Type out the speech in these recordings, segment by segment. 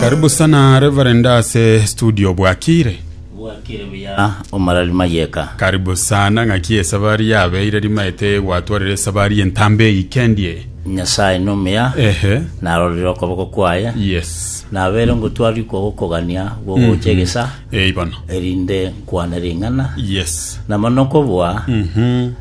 Karibu sana Reverend ase studio bwakire. bwakire buya omarari mayeka Karibu sana ng'aki esabari yabeire rimaete gwatwarire esabari entambe eyikendie. nyasaye nomuya Ehe. narorire okoboko kwaye Yes. nabere ngotwari kogokogania gogocha egesa Eh bono. erinde nkwane ring'ana Yes. na mono kobua Mhm.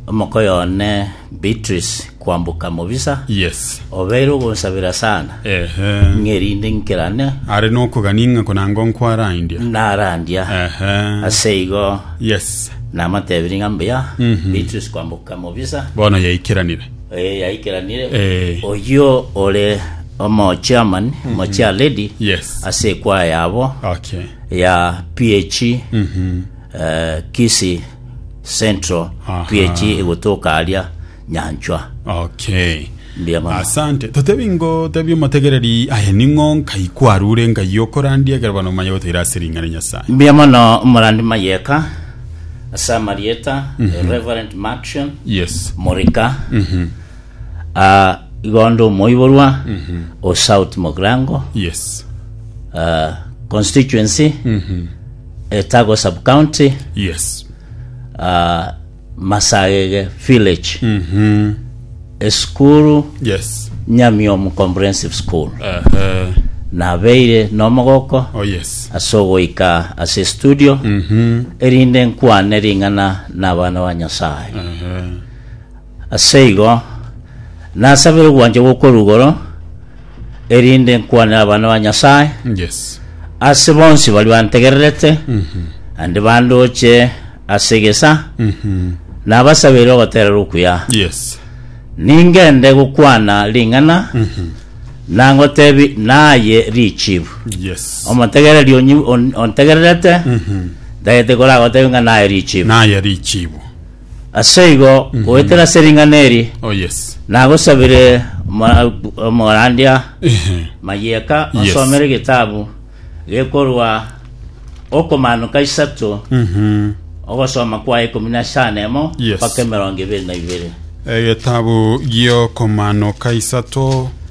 omokoyo one Beatrice kwamboka mobisa, Yes. obeire ogonsabera sana, Ehe. ng'a erinde nkerane Are nokogania ng'a konango nkwarandia. narandia. Ehe. Ase igo Yes. namatebirie ng'a mbuya, Mhm. Beatrice kwamboka mobisa, Bono yaikeranire. eh, yaikeranire, Eh. oyio ore omochairman, omochair lady, Yes. ase ekwaya yabo Okay. ya PH Mhm. eh, Kisii Central Aha. twiechi egotoka aria nyanchwa Okay. Mbuya mono. Asante. Totebi ngo tebi omotegereri aye ning'o nkai kwarure ngai okorandia ekero bana omanye goteira ase ring'a ria Nyasaye. mbuya mono omorandi mayeka ase amarieta Reverend Maction Yes. Morika Aa igo onde omoiborwa o South Mogrango Yes. ah, constituency, Etago sub county, Yes. ah, Masagege village, esukuru Yes. Nyamiomu comprehensive school. Aha. Nabeire nomogoko Oh yes. ase ogoika ase studio erinde nkwane ring'ana n'abana ba Nyasaye. Aha. Aseigo nasabire ogwancha gw'okorwa igoro, erinde nkwanere abana ba Nyasae ase bonsi baria bantegererete, naende bandooche ase egesa. Nabasabire ogoterera okuya, ningende gokwana ring'ana, na ngoteebie, Naye richibu. Omotegereri ontegererete, ntagete koragoteebie ng'a naye richibu. Aseigo goetera ase ring'ana eri Oh yes. nagosabire omora- omorandia Ehe. Mayieka Yes. osomere getabu gekorwa Okomaanoka isato Mhm. ogosoma kwa ikomi na echano emo Yes. mpaka emerongo ebere na ibere. Egetabu giokomaanoka isato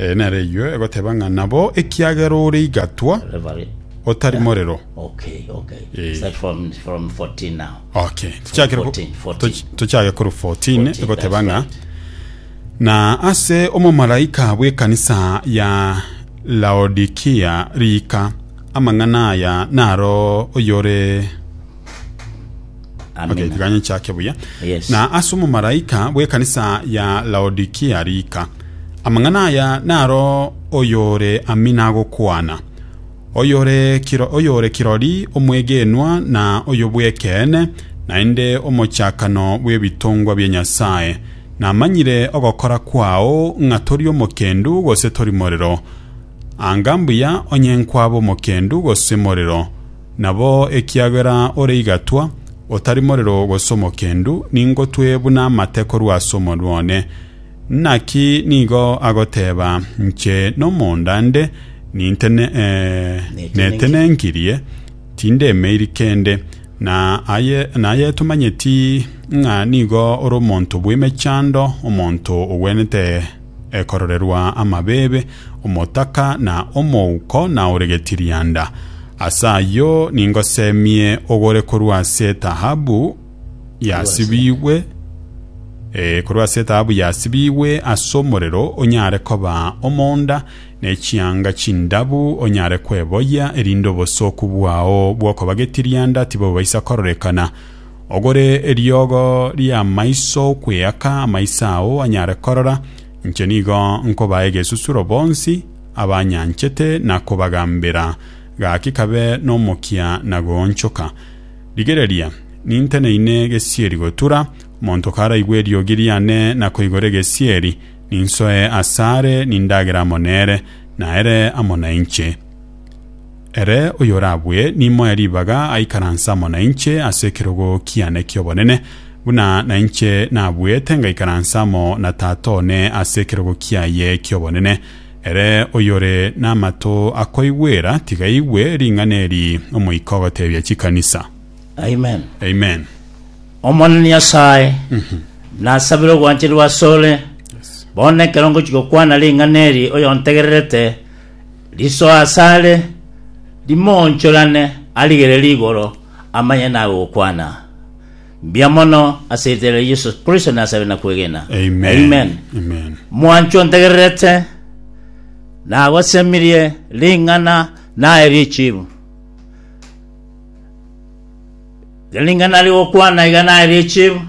Ee, nareyio egoteba ng'a nabo, ekiagera ore igatwa, Reverie. otari morero. Okay, okay. Eh. Start from from 14 now. Okay, tochakere ko- 14, 14. toch- tochake kore 14 14, egoteba that's ng'a right. na ase omomalaika bw'ekanisa ya laodikia riika amang'ana aya naro oyore Amina. Okay, tikanye nchake buya. Yes. Na ase omomalaika bw'ekanisa ya Laodikia rika. Amang'ana aya naro oyore Amina agokwana. Oyore kiro, oyore kirori omwegenwa na oyobw'ekeene, naende omochakano bw'ebitongwa bia Nyasaye. Namanyire ogokora kwao ng'a tori omokendu gose tori morero. Anga mbuya onye nkwaba omokendu gose morero. Nabo ekiagera ore igatwa, otari morero gose omokendu, ningotwe buna amate korwa ase omonwa one. Naki nigo agoteeba, Inche nomonda nde, netenenkirie, tindemeiri kende. Na aye tomanyeti ng'a nigo ore omonto bw'emechando, omonto ogwenerete. ekororerwa amabeebe, omotaka, na omouko, na ore getirianda. Ase ayio ningosemie ogore korwa ase etaabu yasibigwe eh, korwa ase etaabu yasibigwe ase omorero, onyare koba omonda, ne chianga chindabu onyare kweboyia, erinde obosooku bwao bw'okoba getirianda tibobaisa kororekana. Ogore eriogo ri'amaiso okweaka amaiso ao anyare korora, inche nigo nkobaa egesusuro bonsi abanyanchete na kobagambera, gaki kabe nomokia na goonchoka. Rigereria, ninteneine gesieri gotura, omonto karaigwe eriogi riane na koigora egesieri, ninsoe asare nindagere amo nere, na ere amo nainche. Ere oyorabue nimoe ribaga aikaranse amo nainche ase ekerogo kiane ki'obonene, buna nainche nabuete ngaikaranse amo na Tata one ase ekerogo kiaye ki'obonene. Ere oyore namato akoigwera, tiga aigwe ring'ana eri Omoika ogoteebia chikanisa. Amen. Amen. Omonene Nyasae, nasabire ogwancherwa asore, bono ekero ngochi gokwana ring'ana eri oyontegererete, Risoa asare, rimoonchorane, arigere rigoro, amanye nabe gokwana. Mbuya mono ase erieta ria Yesu Kristo nasabe na kwegena. Amen. Amen. Amen. Mwanchwa ontegererete, nagosemirie ring'ana naye richibu. Ring'ana rigokwana iga naye richiru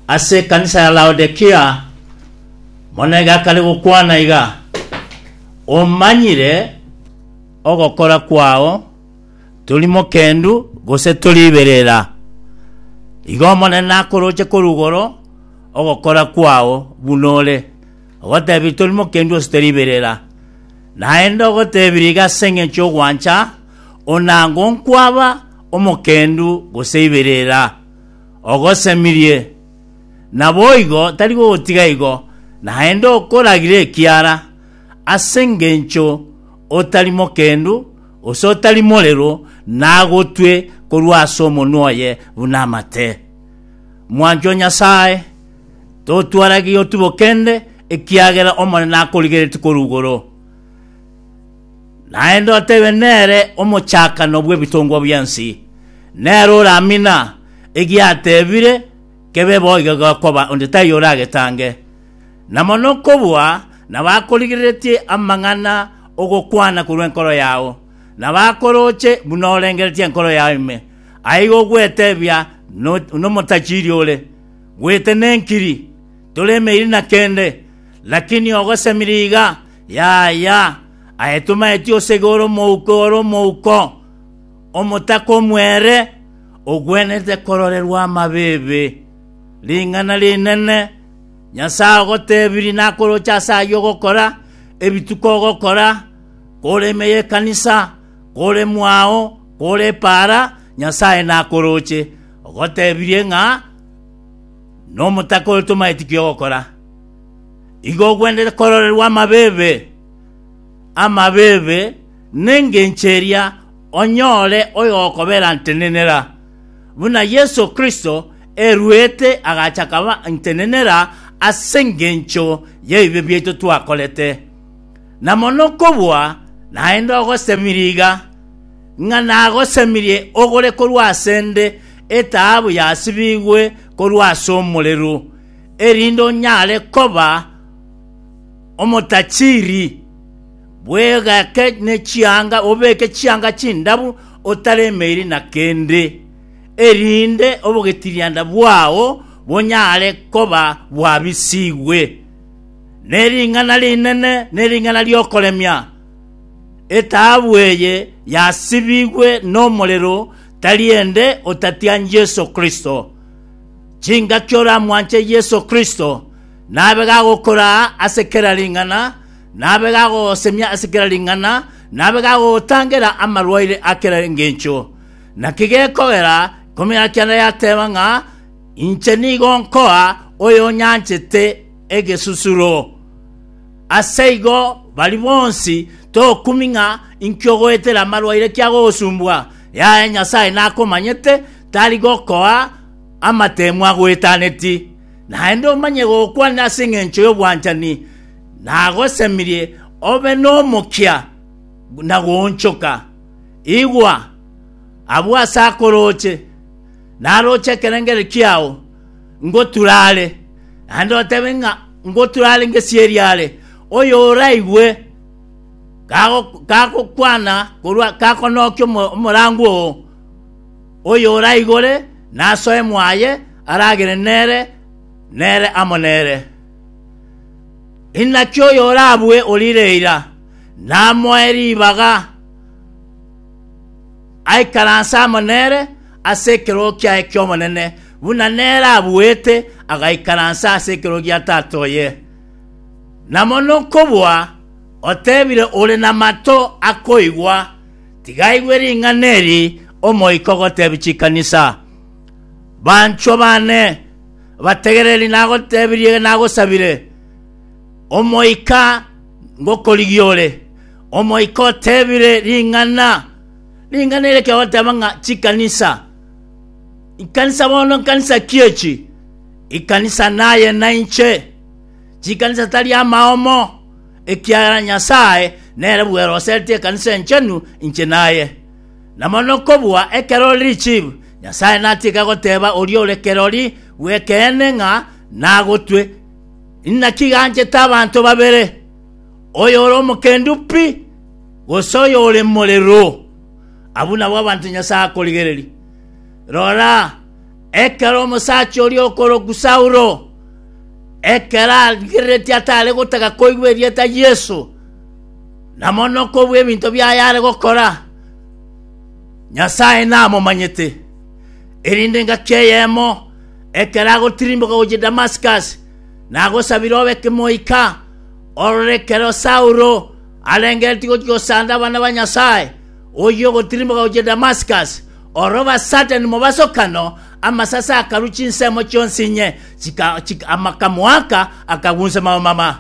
ase ekanisa ya Laodikia, monege akare gokwana iga, Omanyire ogokora kwao, tori mokendu gose tori iberera. Igo Omonene nakoroche korwa igoro ogokora kwao buna ore, ogotebirie tori mokendu gose tori iberera. Naende ogotebirie iga ase engencho y'ogwancha onango nkwaba omokendu gose iberera, ogosemirie. Naboigo tari gogotiga igo, naende okoragire ekiara, ase engencho otari mokendu, gose otari morero, nagotwe korwa ase omonwa oye buna amate. Mwanchi o Nyasae, totwarage otibokende, ekiagera Omonene akorigeretie korwa igoro. Naende otebe, Nere omochakano bw'ebitongwa bi'ense, nere oramina egiatebire kebe bo iga gekoba, onde taiyo oragetange. Na mono kobua nabakorigereretie amang'ana ogokwana korwa enkoro yao, na bakoroche buna orengeretie enkoro yao ime, aiga ogwetebia nomotachiri ore, Bwete nenkiri, tore emeiri na kende, lakini ogosemire iga Yaya, aye tomaeti osege ore omouko, ore omouko, omotaka omwere, ogwenerete kororerwa amabeebe. Ring'ana rinene! Nyasae agotebirie nakoroche ase ayio ogokora, ebituko ogokora, kore ime y'ekanisa, kore mwao, kore epaara, Nyasae nakoroche, ogotebirie ng'a nomotaka ore tomaeti ki ogokora. Igo ogwenerete kororerwa amabeebe, amabeebe, nengencho eria onyore oyokoberantenenera, buna Yeso Kristo eruete agacha akaba ntenenera ase engencho y'ebibe biaito twakorete. Na mono kobua naende ogosemirie iga, ng'a nagosemirie ogore korwa asende etaabu yasibigwe korwa as'omorero, erinde onyare koba omotachiiri bw'egake ne chianga, obeke chianga chindabu otaremeiri na kende, erinde obogetirianda bwao bonyare koba bwabisigwe ne ring'ana rinene ne ring'ana ri'okoremia. Etaabu eye yasibigwe nomorero, tari ende otatian Yeso Kristo. Chingaki oramwanche Yeso Kristo nabe gagokoraa ase kera ring'ana, nabe gagogosemia ase kera ring'ana, nabe gagogotangera amarwaire a kera engencho. Naki gekogera ekomera kiana yateba ng'a, Inche nigo nkoa oyonyanchete egesusuro. Aseigo baria bonsi togokumi ng'a inki ogoetera amarwaire kiagogosumbwa, yaya Nyasae nakomanyete, Tari gokoa amateemu agwetaneti, naende omanye gokwana ase engencho y'obwanchani nagosemirie obe nomokia na goonchoka. Igwa, abwo ase akorooche, narooche ekerengerio kiao, ngotura are, naende otebe ng'a ngotura are ngesierie are, oyoraigwe kago- kagokwana korwa kakonokia omo- omorango oo. Oyoraigore nasoe mwaye aragere nere, nere amo nere. Inaki oyorabue orire eira, namoe ribaga, aikaranse amo nere ase ekerogo kiaye ki'obonene, buna nere abuete agaikaransa ase ekerogo gia Tata oye. Na mono nkobua, otebire ore namato akoigwa. Tiga aigwe ring'ana eri Omoika ogoteebia chikanisa, Banchwa baane, bategere eri nagoteebirie nagosabire, Omoika ngokorigia ore. Omoika oteebire ring'ana, ring'ana eri ekegoteeba ng'a chikanisa. Ikanisa bono nkanisa ki echi? Ikanisa naye nainche. Chikanisa tari amaomo, ekiagera Nyasae nere bweroseretie ekanisa enchenu inche naye. Na mono kobua ekerori richibu, Nyasae natige goteba oria ore kerori gw'ekeene ng'a nagotwe. Inaki ganchete abanto babere, oyore omokendu pi, gose oyore morero? Abwo nabwo abanto Nyasae akorigereria. Rora, Ekero omosacha oria okorokwa Saulo, ekero arigereretie atare gotaka koigwa erieta Yeso, na mono kobua ebinto biaye are gokora, Nyasae namomanyete. Erinde engaki eyemo, ekero agotirimboka gochia Damascus, nagosabire obe kemoika, orore ekero Saulo arengereretie gochia gosanda abana ba Nyasae, oyio ogotirimboka gochia Damascus, Oro basatani mobasokano, amasase akarwa chinsemo chionsi inye, amakamoaka akagunsa mamama.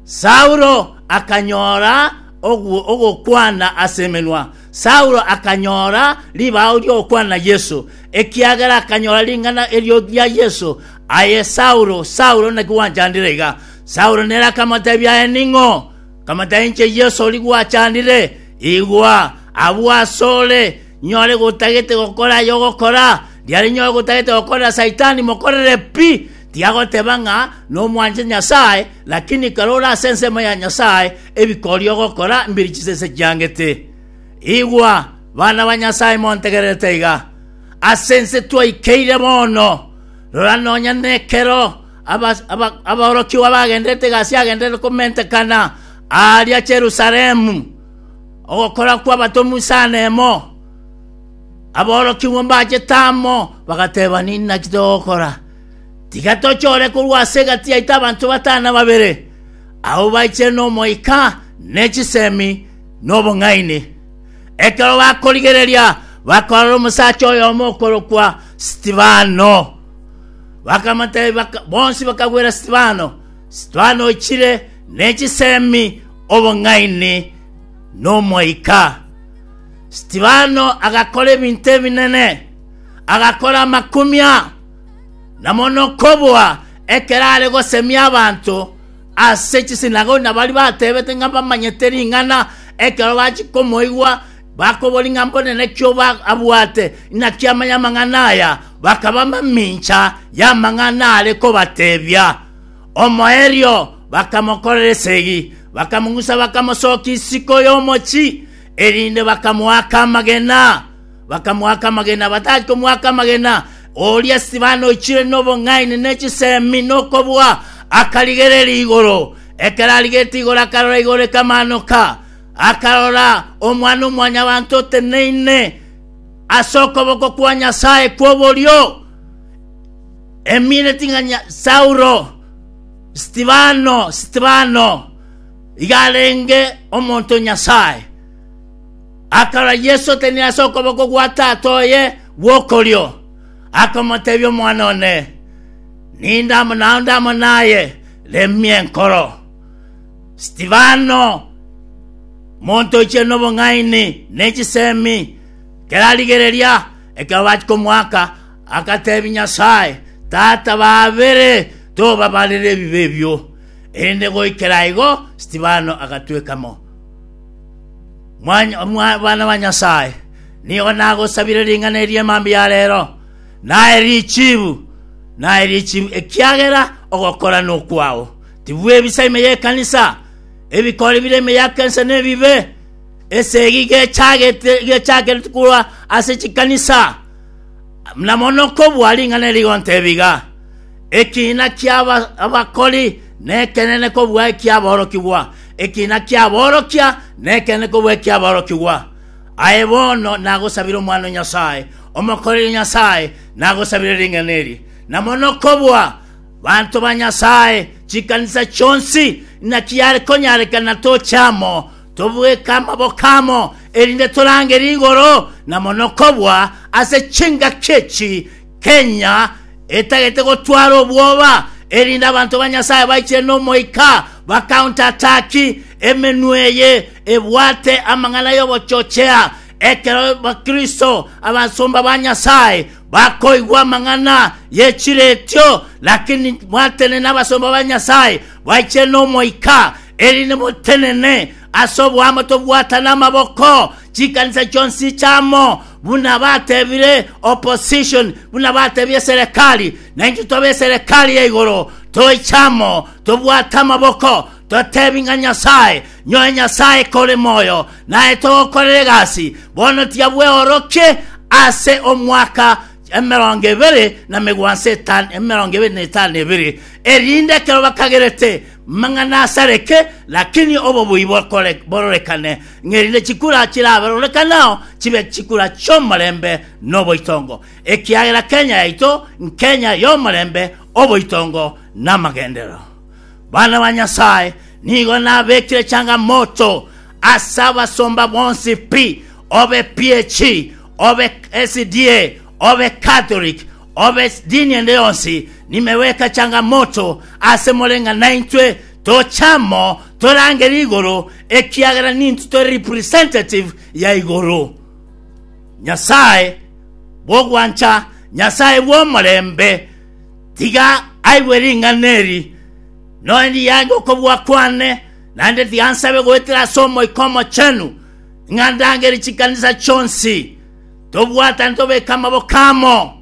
Saulo akanyora ogokwana ase emenwa, Saulo akanyora ribao ri'ogokwana na Yeso, ekiagera akanyora ring'ana erio ria Yeso, Aye Saulo, Saulo, naki gwanchandire iga? Saulo nere akamotebia, Aye ning'o? Kamata inche Yeso oria gwachanire, igwa, agwo asore, nyore gotagete gokora aya ogokora. Riare nyore gotagete gokorera Saitani, mokorere pi. Tiagoteba ng'a nomwanche Nyasae, lakini kare ore ase ensemo ya Nyasae, ebikoria ogokora mbiri chisese chiangete. Igwa, bana ba Nyasae montegererete iga. Ase ense twaikeire bono, rora nonya nekero Aba- aba- aborokigwa bagenderete egasi yagendererete komentekana aaria Yerusalemu, ogokora kw'abatomwa isano emo. Aborokigwa mbachete amo, bagateba, Ninaki togokora? Tiga tochore korwa ase egati yaito abanto batano na babere, abwo baichere n'Omoika, ne chisemi, na obong'aini. Ekero bakorigereria, bakarora omosacha oyomo okorokwa Stefano, Bakamotebia, baka- bonsi bakagwera Stefano. Stefano ochire ne chisemi, obong'aini, na Omoika. Stefano agakora ebinto ebinene, agakora amakumia, na mono kobua ekero are gosemia abanto ase chisinagogi, na baria batebete ng'a bamanyete ring'ana ekero bachia komoigwa Bakobori ng'a mbone nakio abwate inaki amanye amang'ana aya, bakaba mamincha y'amang'ana are kobatebia. Omoerio bakamokorera esegi, bakamong'usa bakamosokia isiko y'omochi, erinde bakamoaka amagena. Bakamoaka amagena, batari komoaka amagena, oria Stefano oichire nobong'aini ne chisemi nokobua, akarigereria igoro. Ekero arigetie igoro akarora igoro ekamaanoka, akarora Omwana-o-mwanyabanto oteneine ase okoboko kwa Nyasae kw'oborio, emineti ng'a Nya- Saulo, Stefano, Stefano, iga arenge omonto o Nyasae. Akarora Yesu oteneine ase okoboko gwa Tata oye gw'okorio, akamotebia omwana one, Ninde amo nao ndamo naye, remia enkoro. Stefano, monto oichire nobong'aini ne chisemi, ekero arigereria ekero bachia komoaka, agateebia Nyasae, Tata babere, tobabarere ebibe ebio. Erinde goikera igo Stefano agatweka mo mwana bwa Nyasae. Nigo nagosabire ring'ana eri emambia ya reero, naye richibu, naye richibu, ekiagera ogokora nokwao. Tibwebisa ime y'ekanisa, ebikori bire ime ya Kensa nebibe, esegi gechagete gechakereti korwa ase chikanisa, na mono kobua ring'ana eri gonte ebiga. Ekiina kia aba- abakori nekenene kobua eki'aborokigwa, ekiina ki'aborokia nekenene kobua eki'aborokigwa. Aye bono nagosabire Omwana o Nyasae, omokoreri Nyasae, nagosabire ring'ana eri, na mono kobua Banto ba Nyasae, chikanisa chionsi, naki yare konyarekana toche amo, tobweke amaboko amo, erinde torange rigoro, na mono kobua ase chingaki echi, kenya etagete gotwara obwoba, erinde abanto ba Nyasae baichire n'Omoika bakauntataki emenwa eye ebwate amang'ana y'obochochea, ekero bakristo abasomba ba Nyasae Bakoigwa amang'ana ye chiretio, lakini mwatenene abasomba ba Nyasae baichire n'Omoika, erinde motenene ase oboamo tobwatane amaboko chikanisa chionsi chiamo, buna batebire opposition, buna batebia eserekari, na intwe tobe eserekari ya igoro, toiche amo, tobwate amaboko, totebi ng'a Nyasae Nyoe Nyasae kore moyo, naye togokorera egasi, bono tiabweorokie ase omwaka emerongo ebere na megwanso etano, emerongo ebere na etano ebere, erinde ekero bakagerete mang'ana asareke, lakini obobui bokore- bororekane, ng'erinde chikura chirabarorekanao chibe chikura chi'omorembe na oboitongo, ekiagera Kenya yaito nkenya y'omorembe, oboitongo, na amagenderero. Bana ba Nyasae, nigo nabekire changamoto ase abasomba bonsi pi, obe PAC, obe SDA, obe Catholic, obe dini ende yonsi, nimeweka changamoto ase more ng'a naintwe toche amo torangere igoro, ekiagera nintwe tore representative ya igoro. Nyasae bw'ogwancha, Nyasae bw'omorembe, Tiga aigwe ring'ana eri, noe ndiyange okobua kwane, naende tiga nsabe goetera ase Omoika Omochenu, ng'a ndangere chikanisa chionsi, tobwatane tobeke amaboko amo,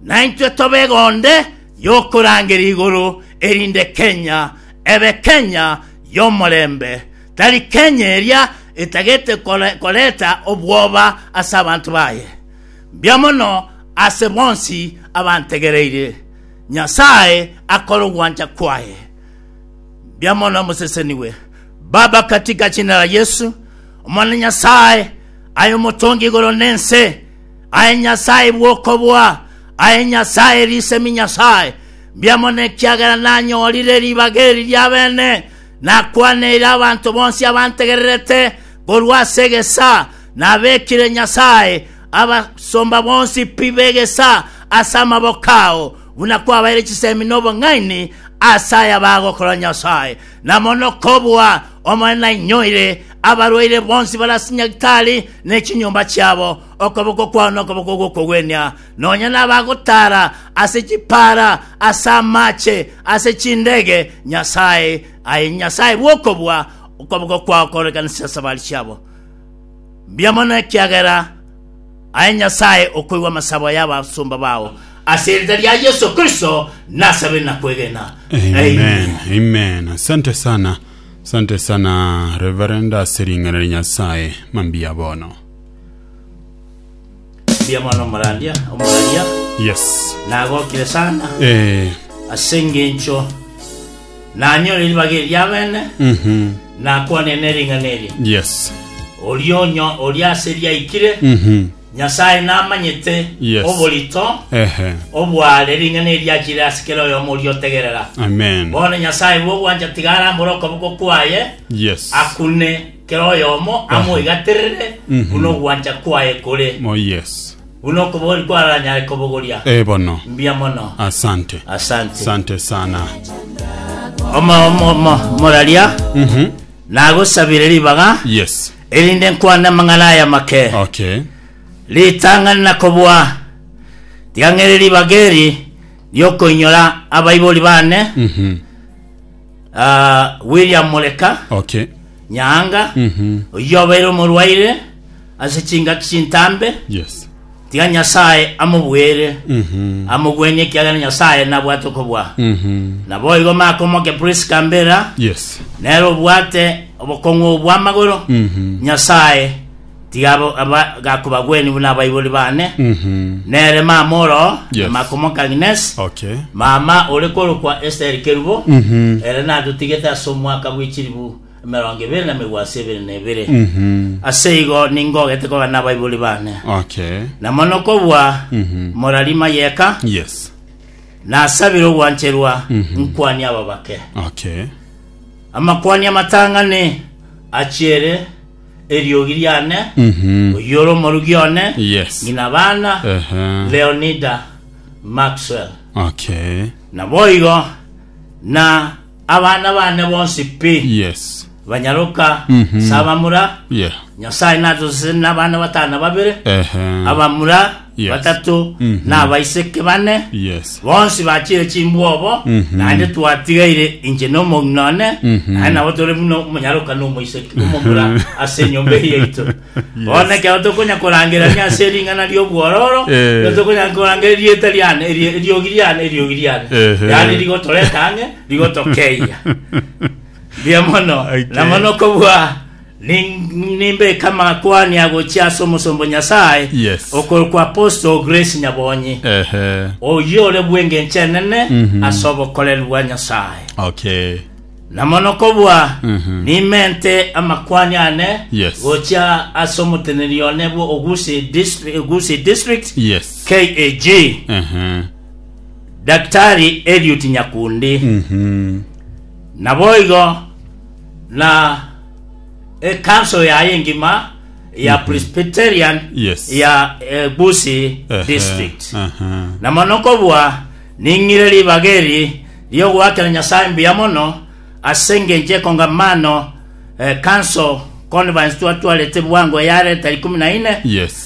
naintwe tobe egonde y'okorangera igoro, erinde Kenya ebe Kenya y'omorembe, tari Kenya eria etagete kore- koreta obwoba ase abanto baye. Mbia mono ase bonsi abantegereire, Nyasae akore ogwancha kwaye. Mbia mono mosesenigwe, Baba, katika jina la Yesu, Omwana Nyasae, aye omotongi igoro na ense, aye Nyasae bw'okobua, aye Nyasae risemi Nyasae. Mbia mono ekiagera nanyorire ribaga eri ri'abene, nakwaneire abanto bonsi abantegererete korwa ase egesa, Nabekire Nyasae abasomba bonsi pi b'egesa ase amaboko ao, buna kwabaeire chisemi n'obong'aini ase aya bagokorera Nyasae. Na mono kobua Omonene nainyoire, abarwaire bonsi bare ase nyagitari ne chinyomba chiabo, okoboko kwao nokoboko gw'okogwenia, nonya nabagotaara ase chipaara, ase amache, ase chindege, Nyasae, aye Nyasae bw'okobua, okoboko kwao koorekanisire ase abari chiabo. Mbuya mono ekiagera aye Nyasae okoigwa amasabo y'abasomba bao ase erita ria Yeso Kristo nasabe na kwegena. Amen. Amen. Asante sana. Asante sana Reverend ase ring'ana ria Nyasae. Mambiya bono. Mbiamano omorandia, omoraria, Yes. nagokire sana Eh. ase engencho nanyore ribaga eriabene Mhm. nakwane nering'ana eri Yes. orionyo oria ase riaikire Mhm. nyasaye namanyete Yes. oborito Ehe. obware ring'ana eriachire ase kera oyomo oria otegerera Amen. bono nyasaye bwogwancha tiga arambore okoboko kwaye Yes. akune Kera oyomo amoigaterere buna ogwancha kwaye kore, Oh yes. buna okobori kwaranyare kobogoria. Eh bono. Mbuya mono. Asante. Asante. Asante sana. Oma omo mo, moraria Mhm. nagosabire ribaga Yes. erinde nkwane amang'ana aya make Okay. ritang'ani na kobua tiga ng'ere ribaga eri riokoinyora abaibori bane Mhm. Ah, William Moleka Okay. Nyaanga Mhm. oyio obeire omorwaire ase chingaki chintambe Yes. tiga Nyasae amobuere Mhm. amogwenie ekiagera Nyasae nabwate okobua Mhm. naboigo makomoke Prisca Mbera Yes. nere obwate obokong'u bw'amagoro Mhm. Nyasae Tiga abo aba gakobagwenia buna abaibori bane, Mhm. nere mama oro Yes. na Makomoka Agnes, Okay. mama ore korokwa Esther Kerubo, Mhm. ere natotigete ase omwaka bwe chilifu emerongo ebere na megwasi ebere na ebere. Mhm. Ase igo ningogete kogana abaibori bane. Okay. Na mono kobua Mhm. morari mayeka, Yes. nasabire ogwancherwa Mhm. nkwania aba bake. Okay. Amakwani amatang'ani achiere Eriogi riane, Mhm. oyio ore omorugi one, Yes. ng'ina abana, Ehe. Leonida Maxwell. Okay. Naboigo na abana bane bonsi pi Yes. banyaroka Mhm. ase abamura, Yeah. Nyasae natoseseni na abana batano babere, Ehe. abamura Yes. batato, Mhm. na abaiseke bane, Yes. bonsi bachire chimbwobo, Mhm. naende twatigaire inche na omong'ina one, Mhm. naye nabo tore buna omonyaroka na omoiseke omomura ase enyomba eye yaito. Bono ekero tokonya korangerania ase ering'ana ri'obwororo, Eh. nero tokonya korangera erieta riane, eri- eriogi riane, eriogi riane. Ehe. Yaani rigotoreta ang'e, rigotokeiya. Mbuya mono, Okay. na mono kobua Nin- Nimbeke amakwani agochia ase omosomba o Nyasae Yes. okorokwa Apostle Grace Nyabonyi, Ehe. oyio ore bw'engencho enene Mhm. ase obokoreri bwa Nyasae. Okay. Na mono kobua Mhm. nimente amakwani ane Yes. gochia ase omoteneneri one bwa Ogusi Distri- Ogusi District Yes. KAG Ehe. Daktari Eliud Nyakundi. Mhm. Naboigo na ekanso yaye engima ya Presbyterian Yes. ya eh, Busi Ehe, district aha. na mono kobua ning'ire ribaga eri riogoakera Nyasaye mbuya mono ase engencho ekongamano eh, council conference twatwarete bwango yareta ikumi na ine Yes.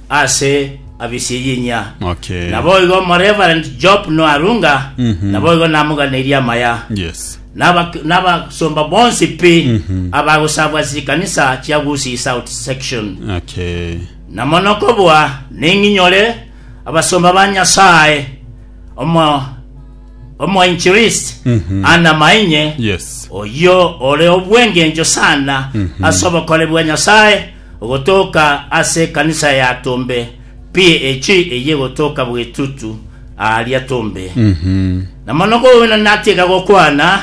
ase abisiyinyia. Okay. Naboigo Reverend Job Noarunga Mhm. naboigo namoganeirie amaya. Yes. Nabak- Nabasomba bonsi pi Mhm. abagosabwa chikanisa chia Gusii South Section. Okay. Na mono kobua ning'inyore abasomba ba Nyasaye omo omoinchirist Mhm. Anna Mainye Yes. oyio ore obwengencho sana Mhm. ase obokori bwa Nyasaye Ogotoka ase ekanisa ya Tombe PAG eyio egotoka bw'etutu aaria Tombe. Na mono kowenwa natiga gokwana,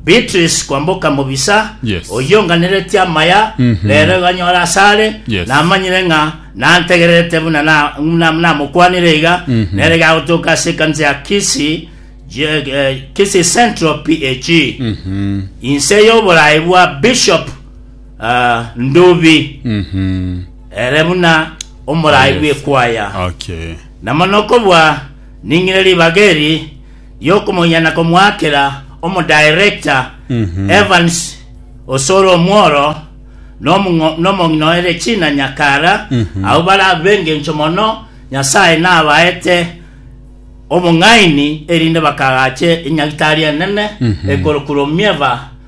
Beatrice kwamboka mobisa, Yes. oyio nganeretie amaya, rero iganyora asare, Yes. namanyire ng'a nantegererete buna na- na- namokwanire iga, nere iga agotoka ase ekanisa ya Kisii, Je- eh, Kisii Central PAG. Inse y'oboraai bwa Bishop Ah, ndubi, Mhm. ere buna omoraai bw'ekwaya. Okay. Na mono kobua ning'ire ribaga eri riokomoiya na komoakera omodirector Mhm. Evans osore omworo nomong'o- nomong'ina o Erechina Nyakara Mhm. abo bare abengencho mono Nyasaye nabaete obong'aini erinde bakagache enyagitari enene Mhm. ekorokurwa omieva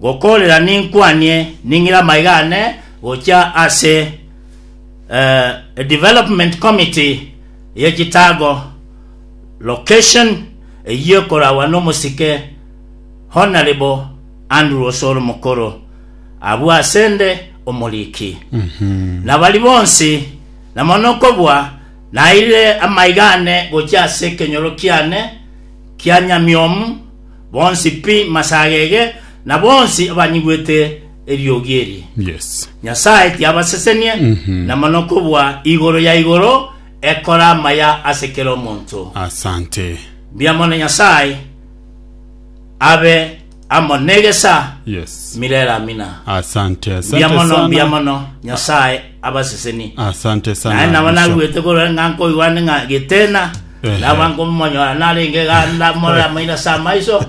Gokoorera ninkwanie ning'ire amaiga aane gochia ase eh, Development Committee ye Chitago Location eyio ekoragwa n'omosike Honourable Andrew Osoro Mokoro abwo asende omoriki. Na bari bonsi na mono okobua nairire amaiga aane gochia ase ekenyoro kiane kia nyamiomu Bonsi pi masagege, na bonsi abanyigwete eriogi eri. Yes. Nyasae tiabasesenie, na mono kobua igoro ya igoro ekora amaya ase kera omonto. Asante. Mbuya mono Nyasae abe amo negesa Yes. mirere amina. Asante, Mbuya asante mono, mbuya sana. mono Nyasae abaseseni. Asante Naye sana. nabo Bishop. naruete korora ng'a nkoigwane ng'a getena Ehe. naba nkomonyora narenge ganda morora maira sa maiso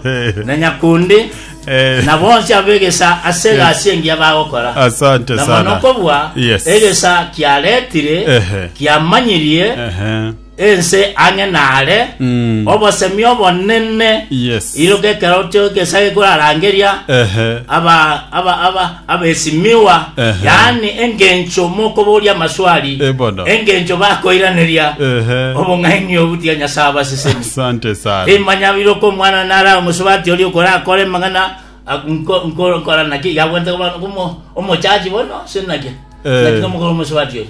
na nyakundi Eh, na bonsi abegesa ase egasi engiya bagokora Asante na mono sana. kobua Yes. egesa kiaretire Ehe. kiamanyirie Ehe. Ense ang'e naare, Mm. obosemi obonene Yes. iroka ekero kio egesaa egeya korarangeria Ehe. aba aba aba abesimiwa Ehe. yaani engencho mokoboria amaswali Eh, bono. engencho bakoiraneria Ehe. obong'aini obutia nyasae abasesemi Asante sana. imanya biroka omwana nara omosubati ori okorakora emang'ana ak- nko- nko- nkora naki yabwente koba- komo- omochachi bono sinaki Eh. sinaki omokoro omosubati ori